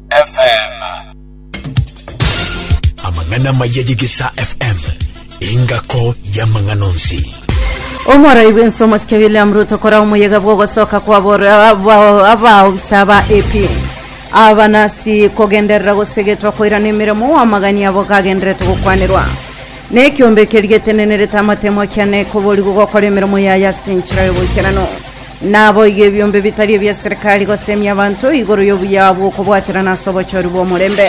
FM. Amang'ana amaya y'Egesaa FM, engako y'amang'ana onsi. Omorai bw'ensomo sike William Ruto kora omoyega bw'ogosoka kwabora aba- abaobisa ba AP abanasi kogenderera gosegetwa koirana emeremo amagani abo gagenderete gokwanirwa nekiombe ekeri getenenerete amatemo kiane koborigwa gokora emeremo yaye ase enchera y'oboikeranu Naboigo ebiombe bitari ebia serikali gosemia abanto igoro y'obuya bw'okobwaterana ase obochori bw'omorembe.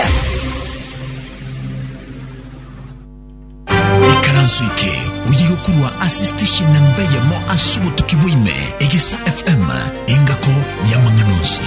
Ikaranso eke oyire korwa ase station namba eyemo ase obotuki bwa ime, Egesa FM, engako y'amang'ana onsi.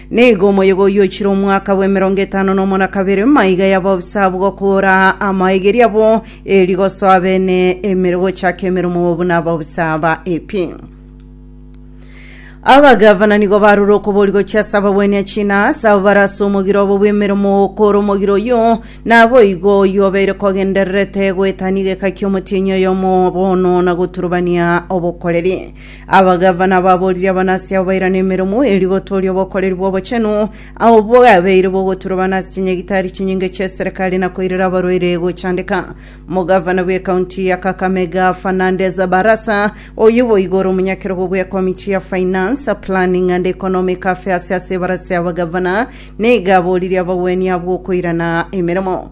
Nigo omoyega oyio oichire omwaka bw'emerongo etano nomo na kabere, maiga y'abaofisa abwo gokora amaegeri abo, eri gosoa bene emere gochaka emeremo buna abaofisa ba AP. Abagavana nigo barure okobori gochia ase abagwenia china ase abo barase omogiro obo bw'emeremo okora omogiro oyio naboigo oyio obeire kogendererete goetania egeka ki'omotienyi oyomo bono na goturubania obokoreri Abagavana baborire abanasi abo bairane emeremo eria gotooria obokoreri bw'obochenu, abo bwabeire bogotura abanasi chinyagitari chinyinge chi'eserekari na koirera abarwaire gochandeka. Omogavana bw'ekaunti ya Kakamega, Fernandes Barasa, oyo boigo ore omonyakerogo bw'ekomichi ya Finance, Planning and Economic Affairs ase ebarasa y'abagavana, nigo aboririe abagwenia abwo okoirana emeremo.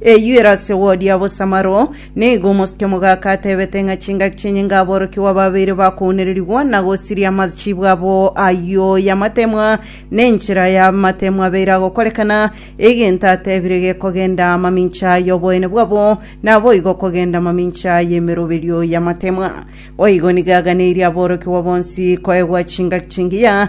Eyio ere ase wodi ya bosamaro. Nigo omosike omogaka atebete ng'a chingaki chi'enyinga aborokigwa babeire bakounererigwa na gosiria amachibwa abo ayio y'amatemwa, ne enchera y'amatemwa abeire agokorekana, egento atebire gekogenda amamincha y'oboene bwabo, naboigo kogenda amamincha y'emeroberio y'amatemwa. Boigo nigo aganeirie aborokigwa bonsi koegwa chingaki chingiya,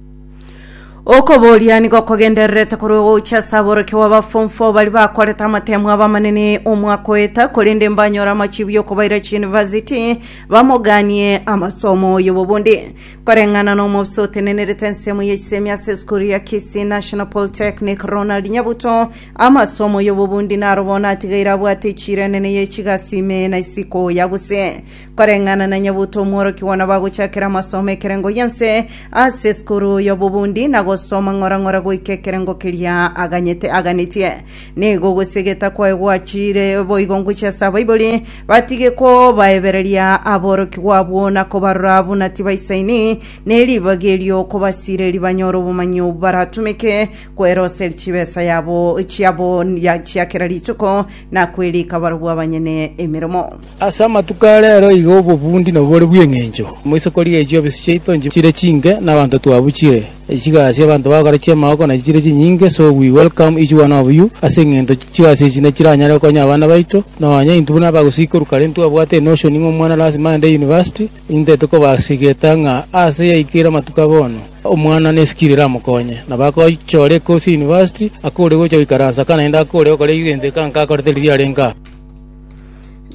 okoboria nigo okogendererete korwa ogocha ase aborokio bw'abafomfo bari bakorete amatemo abamanene omwaka oeta korende mbanyora amachibu y'okobaira chiyunivasiti bamoganie amasomo oyobo bonde koreng'ana na omobisa otenenerete ensemo y'echisemi ase esukuru ya Kisii National Polytechnic Ronald Nyabuto amasomo oyobo bonde naro bono atigaire abwate echiro enene y'echigasi ime na isiko ya gose Koreng'ana na Nyabuto omworokigwa nabagochakera amasomo ekerengo gionsi ase esukuru y'obobundi na gosoma ng'ora ng'ora goika ekerengo keria aganyete aganetie. Nigo gose egeta kwaye gwachire boigo ngochia ase abaibori batige kobaebereria aborokigwa abwo na kobarora buna tibaisaini neribaga erio kobasireri banyore obomanyi obwo baratumeke kweroseri chibesa yabo chiabo ya chia kera rituko na kwerika barobwo abanyene emeremo. Ase amatuko a reero iga obobundi nobore bw'engencho. Moise korigia echio ebisi chiaito nchire chinke, na abanto twabuchire, chigasi abanto bagokora chi'amaoko nachi chire chinyinge, so we welcome each one of you, ase engento chigasi echi nechiranyare gokonya abana baito, nonya intwe buna abagosikorwa kare ntwabwate enotion ng'a omwana lasima agende university, intete kobasigeta ng'a ase yaikeire amatuko a bono, omwana ne skill eramokonye, na bagochora ecourse ya university, akore gocha goikaransa ka naende akore gokora egento eka nkakorete riria arenge aa.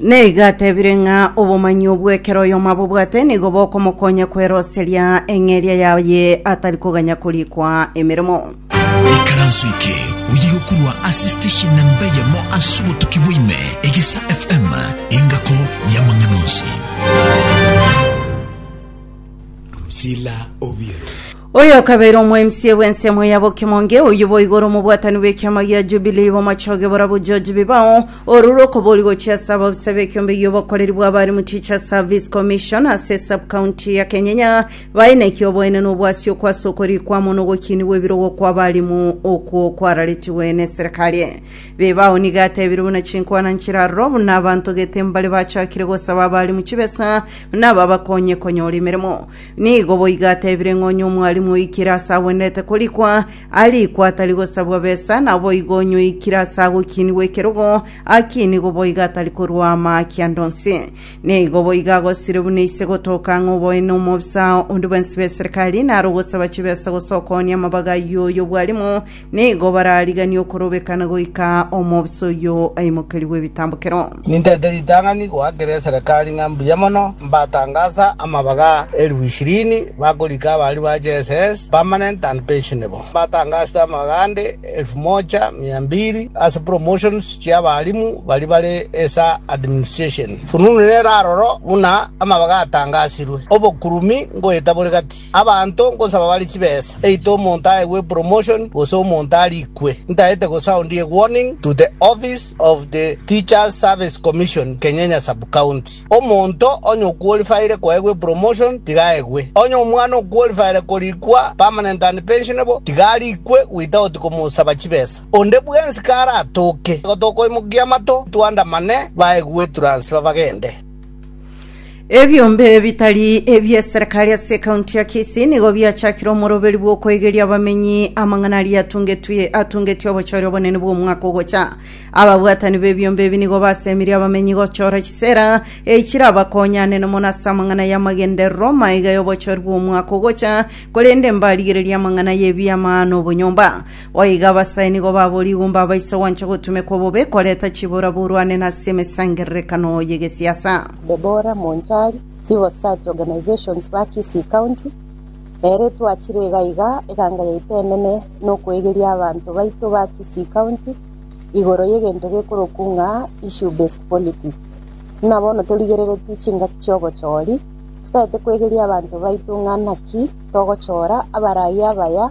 Neigo atebire ng'a obomanyi obwo ekero oyomo abobwate nigo bokomokonya kweroseria eng'eria yaye atari koganya korikwa emeremo. ikaranso eke oye gokurwa ase station namba eyemo ase obotuki bwaime egesa fm engako y'amang'ana onsi Priscilla Obiero. Oyo okabeire omoemisia bw'ensemo ya bokemonge, oyio boigo ore omobwatani bw'ekiama gia Jubilii, bomochoge borabwo George Bibao, orure okobori gochia ase ababisa b'ekiombe gi'obokoreri bw'abarimu Teachers Service Commission ase Sub-county ya Kenyenya, baineke oboene na obwasioko ase okorikwa amo n'ogokinigwa ebirogo kw'abarimu okwo kwararetigwe n'eserekari. Bibao nigo atebire buna chinkwana nchiraroro buna abanto gete mbare bachakire gosaba abarimu chibesa buna babakonye konyora emeremo. Nigo boigo atebire ng'a onye omwalimu oikire ase agwenerete korikwa, arikwe atari gosabwa besa, naboigo onye oikire ase agokinigwa ekerogo, akinigwe boigo atari korua amaki ande onsi. Nigo boigo agosire buna ise gotoka ng'a oboe nomobisa onde bwensi bw'eserikari, naro ogosaba chibesa gose okoonia amabaga y'oy'obwalimu, Nigo barariganie okorobekana goika aa omobisa oyio aimokerigwe ebitambokero. Nintete ritang'ani goakera eserekari ng'a mbuya mono mbatangasa amabaga elifu ishirini bakorika abaria ba JSS, permanent and pensionable. Mbatangasete amabaga ande elifu mocha mia mbiri ase promotions chi'abalimu baria bare esa administration. Fununu nere aroro buna amabaga atangasirwe, obokurumi ngoeta bore gati. Abanto ngosaba bare chibesa, eite omonto aegwe promotion gose omonto arikwe. Ntaete gosound a warning to the office of the Teachers Service Commission, Kenyenya Sub-County. Omonto onye okwolifaire koegwa epromotion tiga aegwe. Onye omwana okwolifaire korikwa permanent and pensionable tiga arikwe without komosaba chibesa. Onde bwensi karatoke gotokoimokia amato, twandamane. Bae gwetwra nse babagende. Ebiombe bitari ebi'eserekari ase ekaunti ya Kisii nigo biachakire omoroberi bw'okoigeria abamenyi amang'ana aria atungetwe atungetie obochori obonene bw'omwaka ogocha. Ababwatani b'ebiombe ebi nigo basemirie abamenyi gochora chisera eh, chirabakonyane mono ase amang'ana y'amagenderero maiga y'obochori bw'omwaka ogocha, korende mbarigereria amang'ana y'ebiama na obonyomba. Goika abasae nigo baborigwe mbabaisa gwancha gotumekwa bobe koreta chibora borwane nase emesangererekano y'egesiasa. Deborah Monchari, Civil Servants Organisations ba Kisii County, Ere twachire iga iga eganga yaito enene nokoegeria abanto baito ba Kisii County igoro yegento gekorokwu ng'a Issue Based Politics. Buna bono torigereretie chingaki chi'obochori, totaete kwegeria abanto baito ng'a naki togochora abaraia abaya,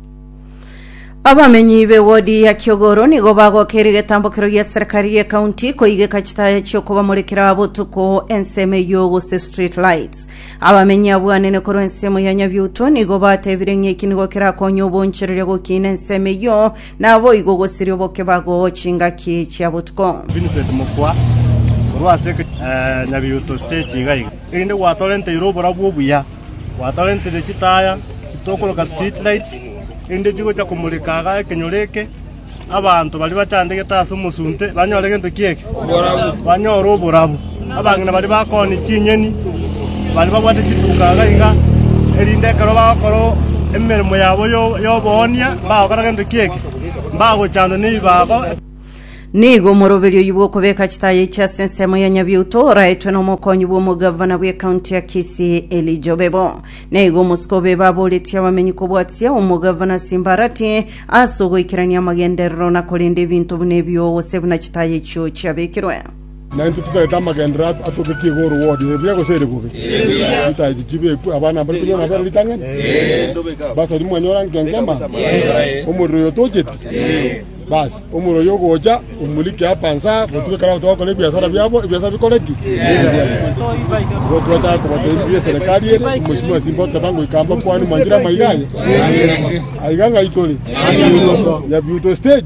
abamenyi b'ewodi ya kiogoro nigo bagokera egetambokero gia serikali ya kaunti koigeka chitaya chi'okobamorikera botuko ensemo eyio gose street lights abamenyi abwanene korwa ensemo ya nyabiuto nigo batebire ng'a eki nigo kerakonye obonchereria gokiina ensemo eyio naboigo gosiria obokebago chingaki chia botuko Vincent Mokwa korwa ase eh, Nyabiuto stage iga iga erinde gwatorenteire oborabwo obuya Gwatorentire chitaaya chitokoroka street lights, erinde chigocha komoreka aga ekenyoro eke, abanto baria bachandegete ase omosunte banyore gento ki eke? Banyore oborabu. Abang'ina baria bakooni chinyeni, baria babwate chiduka iga iga, erinde ekero bagokora o- emeremo yabo yo- y'oboonia, mbagokora gento ki eke? Mbagochandwa nebibago. Nigo omoroberio oyio bw'okobeka chitaya echi ase ensemo ya Nyabiuto oraetwe n'omokonyi bw'omogavana bw'ekaunti ya Kisii Elijah Obebo. Nigo omosiko Obebo aboretie abamenyi kobwatia omogavana Simbarati ase ogoikerania amagenderero na korenda ebinto buna ebio gose buna chitaya echio chiabekirwe. Na intwe titaete amagenderero atoketie igoro word, ere buya gose ere bobe? Ritae chichibi ekwe, abana mbare konywa nabere ritang'ani? Basari mwanyora nkenkema? Omorero oyo tocheti? Basi, omorero oyo ogocha, omorike apa nsa, gotuge kare abanto bagokora ebiasara biabo, ebiasara bikore ki? Igo twachaka kobatebia ebiya eserekari ere, omosimwa simba oteba ngoika mbakwane mwanchire amaiga aye. Aiga ng'ai tore? Yabiuto stage?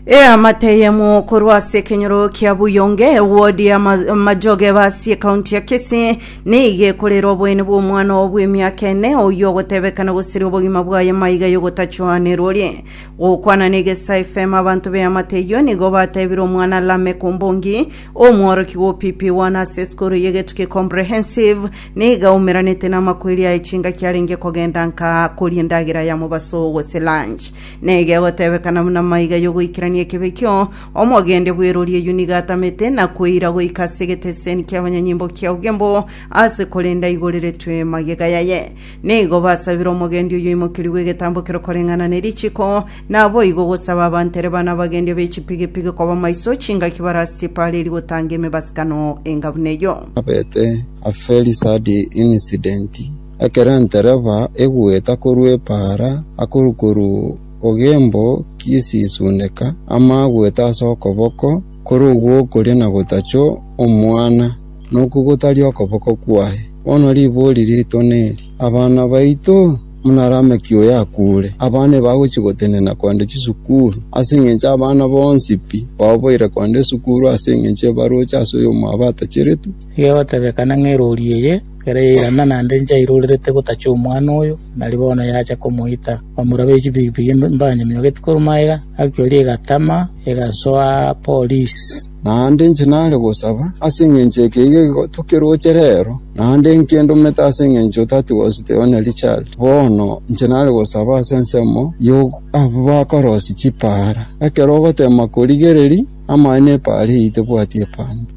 Eamate eyemo korwa ase ekenyoro kia Buyonge, ewodi ya Ma- Majoge basi ekaunti ya Kisii, nigo ekorera oboyeni bw'omwana oo bw'emiaka ene, oyio ogotebekana gosiria obogima bwaye maiga y'ogotachwanerwa orie. Gokwana n'egesa FM abanto b'eamate eyio nigo batebire omwana Lameck Ombongi, omworokigwa o PP1 ase esukuru y'Egetuki Comprehensive, nigo aumeranete namakweri aye chingaki arenge kogenda nka koria endagera ya mobaso gose lunch. Nege gotebekana buna maiga y'ogoikerania ekebe ekio, omogende bw'eroori eyio nigo atamete na koira goika ase egeteseni ki'abanyanyimbo kia Ogembo ase korenda aigoreretwe magega yaye. Nigo basabire omogendi oyio oimokerigwe egetambo kere koreng'ana ne richiko, naboigo gosaba abanto ere bana abagendi ab'echipigipigi koba maiso chingaki barase chipaareri gotanga emebasikano enga buna eyio. Abete a very sad incident Ekero entereba egweta korwa epaara, akoru koru ogembo gisisundeka, ama agwete ase okoboko kore ogwokoria na gotacha omwana, nokwo gotari okoboko kwaye. Bono ribori rito neri, Abana baito, buna Lameki oyo akure, abana ebagochia gotenena kogenda chisukuru, ase engencho abana bonsi pi baoboire kogenda esukuru ase engencho ebaroche ase oyomwabo atacheretwe. Egegotebekana ng'a eroori eye Ekero yairana naende nchairorerete gotacha omwana oyo, nari bono yacha komoita. Bamura be chibigibigi mbanyamiogeti korwa magega, actually egatama, egasoa polisi. Naende inche nare gosaba ase engencho eke iga igotu kiroche rero, naende inke ndomete ase engencho that was the only child. Bono inche nare gosaba ase ensemo yo abwo bakorosia chipaara. Ekero ogotema korigereria, amaene epaara eye tebwati epambe.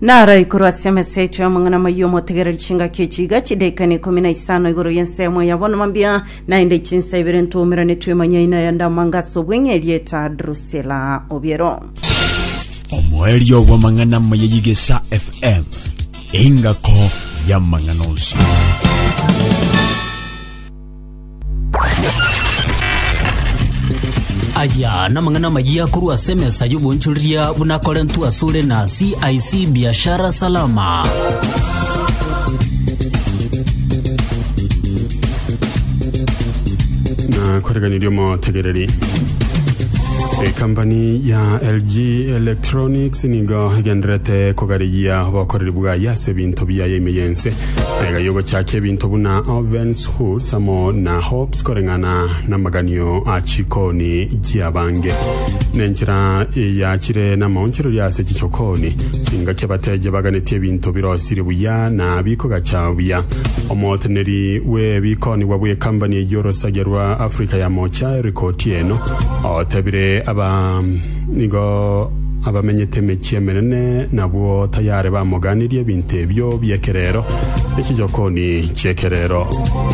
Naro igoro ase emesecho y'omong'ina moyio omotegereri chingaki echi iga chidaika na ikomi na isano igoro y'ensemo ya bono mambia, naende chinsa ibere ntoumeranetwe emanyaina ya ndamanga ase obweng'e erieta Drusilla Obiero. omoerio bw'amang'ana maya y'egesa fm engako y'amang'ana onsi Aya namang'ana amayia korwa ase emesa y'obonchoreria buna Korentu asore na CIC Biashara Salama. na koreganiria omotegereri ekampani ya lg electronics nigo egenderete kogarigia obokoreri bwaye ase ebinto biaye ime yense Aiga yogochakia ebinto buna ovens, hoods, amo na hopes koreng'ana namaganio a chikoni chiabange. Nenchera yachire namaonchoreria ase chichokoni, chingaki abateja baganetie ebinto birosirie buya na bikogacha buya. Omoteneri bw'ebikonigwa bw'ekambani y'orosagia rwa Africa ya Mocha, Eric Otieno, otebire aba Nigo abamenyete emechie emenene nabwo tayare bamogaanirie ebinto ebio bi'ekerero ne chichokoni chi'ekerero.